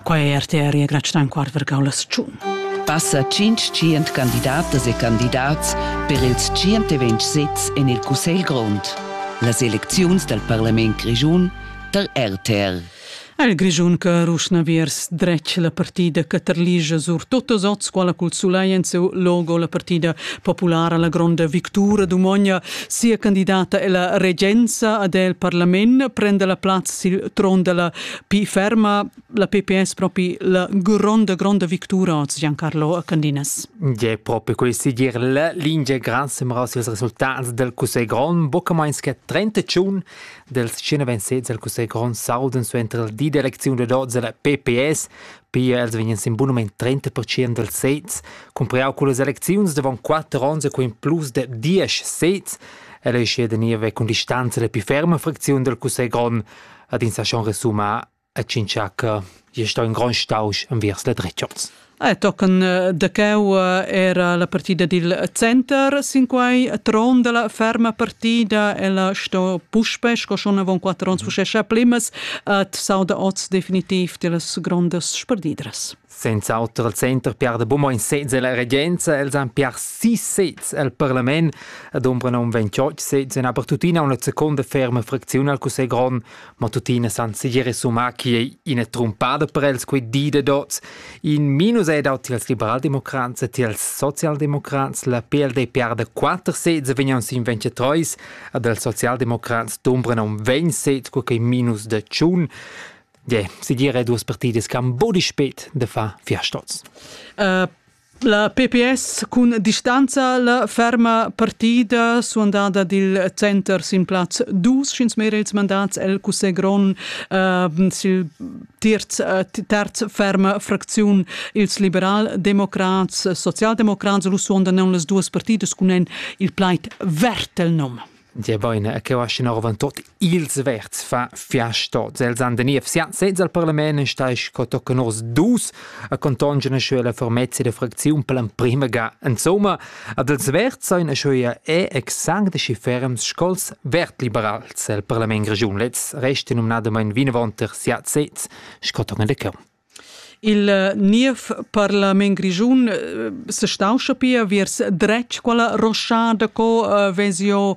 Quai è RTR e grazia in quart vergau las tschun. Passa tschient candidatas e candidats per ils 120 sezs en il Cussegl grond. Las elecziuns dal Parlament grischun tar RTR. El Grischun che ruschna viers dretg la partida che terligia sur totas oz quella cul sulai en seu logo la partida populara la gronda victura d'Umogna Sia candidata ella regenza ad el parlament prende la plazza sil tron della pi ferma, la PPS propi la gronda, gronda victura oz Giancarlo Candinas. E proprio questi dir la lingia gran sembra als resultats del Cussegl Grond, buca meins che 31 dels 126 del Cussegl Grond salden su entro il di d'elezione d'oz della PPS Pia els vegnan sin bun mument 30% dals sezs, cumpriau cullas elecziuns davon quatter onns e co in plus de 10 sezs. El ei sche da niev cun distanza la pli ferma fracziun dal cussegl grond, ad ins ha schon resumà a Cinciacca e sto in grond stausch envers la dretgers. Eh, tochen eh, da cheu eh, era la partida dil center sin quei tron della ferma partida, ella sto puspe, sco schon avon quattro ons mhm. fuschescha plimas, et s'auda oz definitiv dellas grondas sperdidras. Senz'auter il Center Pierre de Beaumont in sez e la regenza, els han Pierre sis sez al Parlament ed ombra nom 28 sez en aber tuttina una seconda ferma fraczione al Cussegl Grond, ma tuttina san segir summa chi è ina trumpada per els quei di de dots. In minus è daut als Liberaldemocrats e als Sozialdemocrats, la PLD Pierre de 4 sez vegnan sin 23 ad els socialdemocrats dombran am vegn set co quei minus de tschun yeah, si dire duas partidas che han bodi spet de fa fiastoz. Uh, La PPS cun distanza la ferma partida suandada dil center sin plaz dus schins merels mandats el cusse gron uh, sil terz, äh, terz ferma fracziun ils liberal-democrats, socialdemocrats, lu suondan non las duas partidas cun en il plaid Wertel nom. Dir bene, che va scin arvan tot ils verts fa fiastot. Els han de niev siat senza al parlament in stais co tocken os dus a contongen sche la formezia de fracziun per l'emprima ga. Insomma, Ad els verd sain eschöia e exsanct schi ferms sco'ls vertliberals el parlament grischun. Lez resta numnadamaing vinavant er sia sez sco tochen de cheu. Il eh, niev parlament grischun eh, se stauscha pia viers dretg quella roschada co eh, vezio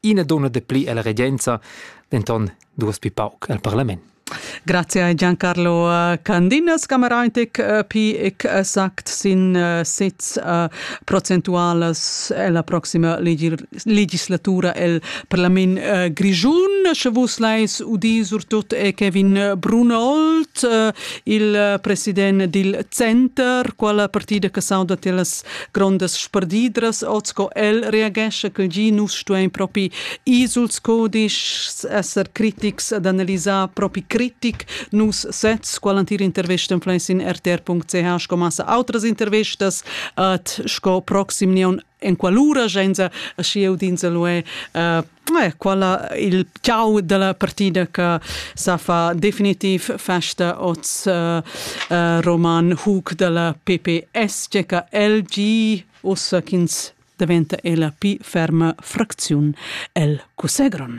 ina donna de pli ella regenza, denton duas pi pauc al parlament. Grazie a Giancarlo eh, Candinas, Cameraintic eh, pi ec exact sin eh, sez procentualas la proxima legislatura el parlament grigiun, sche vus leis udi surtut e Kevin Brunold, il president dil Center, quala partida che sauda telas Grondas sperdidras oz co el reagesce che gi nus stuein propi ir suls codischs, esser critics ed analisar propi critic nus sez qualantir intervist en in rtr.ch sco massa outras intervistas at sco proxim neon en qualura genza schi eu dinse lu è uh, Eh, quella il ciao della partida che sa fa definitiv festa oz uh, uh, Roman Hug della PPS, che LG ussa ch'ins diventa ella pi ferma fracziun el Cusegron.